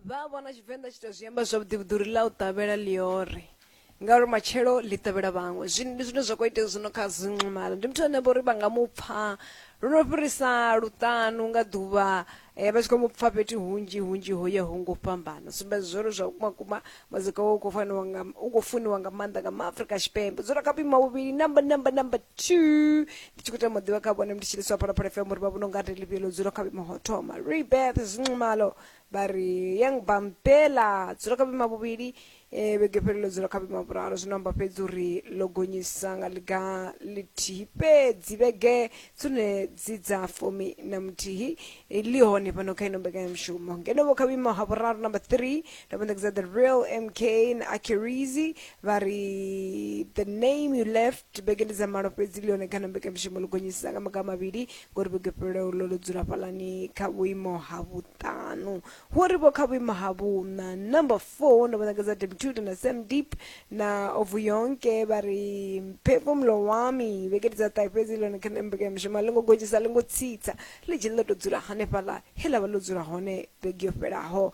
vha vhona tshivenḓa tshi to zwi amba zwavhuḓi vhuḓi uri ḽa u ṱavhela ḽiore ngauri matshelo ḽi ṱavhela vhaṅwe zwino ndi zwine zwa kho itea zwino kha zinxumalo ndi muthu ane vho uri vha nga mu pfha lu no fhirisa luṱanu nga ḓuvha eh, vha tshi khou mu pfha fhethu hunzhi hunzhi ho ya ho ngo fhambana sumbedza zwo uri zwa vhukuma kuma muzika wo u khou faniwa nga u khou funiwa nga maanḓa nga maafrika tshipembe dzula kha vhuima vhuvhili number number number two ndi tshi khou tama ḓivha kha vhone ndi tshi liswa phala phala fm uri vha vhona unga ri ḽivhiyo ḽo dzula kha vhuimo ho thoma rebeth zinxumalo vha ri yang bampela dzula kha vhuima vhuvhili um vhege fhelo ḽo dzula kha vhuima vhuraru zwino amba fhedzi uri ḽo gonyisa nga ḽiga ḽithihi fhedzi vhege dzone dzi dza fumi na muthihi ḽi hone fhano kha ino mbekanyamushumo ngeno vho kha vhuimo ha vhuraru number three ndo vha ṋekedza the real mk na akirizi vha ri the name you left vhege ndi dza malo fhedzi leone kana mbekanyamushumo ḽi gonyisisa nga maga mavhili ngori vhege fhelelaho ḽo ḽo dzula fhalani kha vhuimo ha vhuṱanu hu ri vho kha vhuimo ha vhuṋa number four ndo vha ṋekedza demtuda na sam deep na ovu yonke vha ri mphefumulo wami vhege ndi dza ṱahe fhedzi leone kana mbekanyamushumo a ḽi ngo gonyisa a ḽi ngo tsitsa ḽi dzheni ḽo to dzula hanefhaḽa he ḽa vha ḽo dzula hone vhege yo fhelaho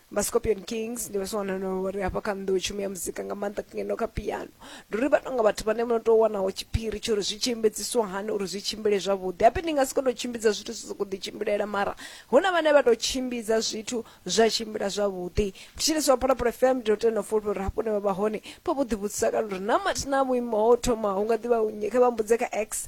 vha scorpion kings ndi vhaswa wana no ri hafha kha nnḓu tshumi ya muzika nga maanḓa ngeno kha piano ndi uri vha tonga vhathu vhane vho no tou wanaho tshiphiri tsho uri zwi tshi embedziswa hani uri zwi tshimbile zwavhuḓi hape ndi nga si kono tshimbidza zwithu zwi sokou ḓitshimbilela mara hu na vhane vha tou tshimbidza zwithu zwa tshimbila zwavhuḓi thetshelesi wa phalaphala fm ndi tou tenda fulufhe uri hafho ne vha vha hone pho vho ḓivhudzisa kana uri na mathina vhuimo ho thoma hu nga ḓivha nnyi kha vha mbudze kha x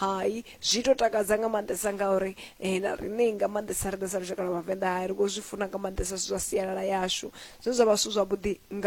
hai zwi to takadza nga maanḓesa ngauri eh, na riṋe nga maanḓesa riṋe sa lushaka lwa vhavenḓa hai ri khou zwi funa nga maanḓesa zwithu zwa sialala yashu zwine zwa vha zwithu zwavhuḓi nga